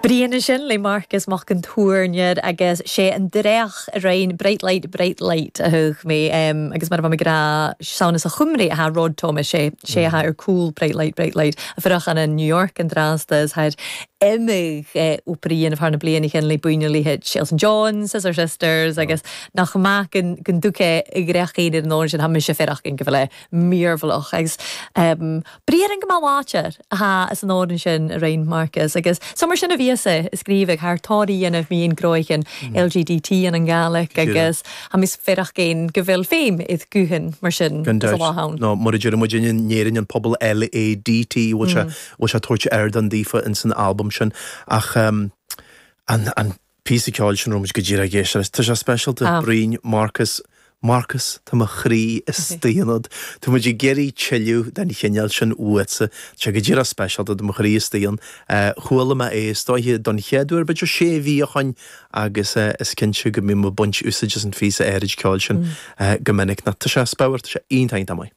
Bruidhinn an sin le Marcas Mac an Tuairneir agus 's e an dreach a rinn Bright Light, Bright Light a thagh mi agus mar a bha mi ag ràdh 's ann às a' Chuimrigh a tha Rod Thomas 's e 's e a tha air cùl Bright Light, Bright Light a' fuireach ann an New York an-dràsta is tha e air iomadh obair a dhèanamh thar nam bliadhnaichean le buidhnean a leithid Elton John, Scissor Sisters agus nach math gun gun tug e a dhreach fhèin air an òran sin tha mise a' faireachdainn gu bheil e mìorbhaileach agus Briathran gu math làidir a tha anns an òran sin a rinn Marcas agus 's ann mar sin a bhios e a' sgrìobhadh tha e air tòrr a dhèanamh mu dheidhinn gnothaichean LGDT ann an Gàidhlig agus tha mise a' faireachdainn gu bheil feum air guthan mar sin Gan is a dabht. bhá ann. Nó mar a deir muid in Éirinn an pobal LADT bhfuil sé bhfuil sé ag tabhairt ardán daofa in san albam sin ach ehm an an píosa ceoil sin a raibh muid go díreach ag éisteacht leis. Tá sé speisialta. Bruidhinn, Marcas, Marcas, tá mo chroí istigh ionat. Tá muid ag iarraidh tuilleadh den chineál sin uaitse. Tá sé go díreach speisialta, tá mo chroí istigh ann. Chuala mé é is dóiche don chéad uair b'fhéidir sé mhí ó shoin agus is cinnte go mbím ag baint úsáid as an phíosa áirid ceoil sin go minic. Tá sé thar barr, tá sé iontach iontach maith.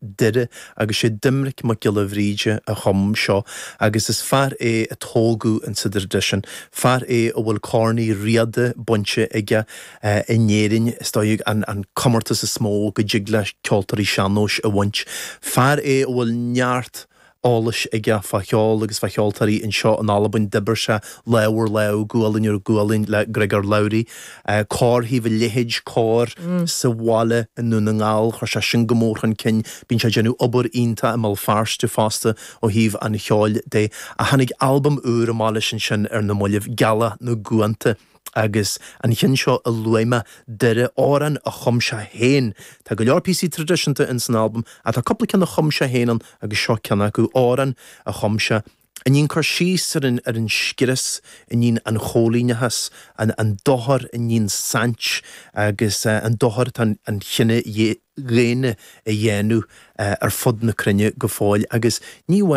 Doire, agus is é Doimnic Mac Giolla Bhríde a chum seo, agus is fear é a tógadh in sa dtraidisiún. Fear é a bhfuil Corn Uí Riada bainte aige in Éirinn, is dóigh, an comórtas is mó go dtig le ceoltóirí sean-nóis a bhaint. Fear é a bhfuil neart. eolais aige fá cheol agus fá cheoltóirí anseo in Albain. D'oibir sé lámh ar lámh, gualainn ar ghualainn le Griogair Labhruidh, Cór Thaobh a' Leithid, cór sa bhaile i nDún na nGall. Chuir sé sin go mór chun cinn. Bíonn sé ag déanamh obair iontach i mBéal Feirste fosta ó thaobh an cheoil de. Ach tháinig albam úr amach leis ansin ar na mallaibh, Gealadh na gCuanta. agus an cionn seo a luaigh mé, Doire, amhrán a chum sé féin. Tá go leor píosaí traidisiúnta in san albam ach tá cúpla ceann a chum sé féin ann agus seo ceann acu, amhrán a chum sé a níonn cur síos ar an ar an scrios a níonn an coilíneachas, an an dochar a níonn saint agus an dochar atá an an chine dhaonna a dhéanamh ar fud na cruinne go fóill agus ní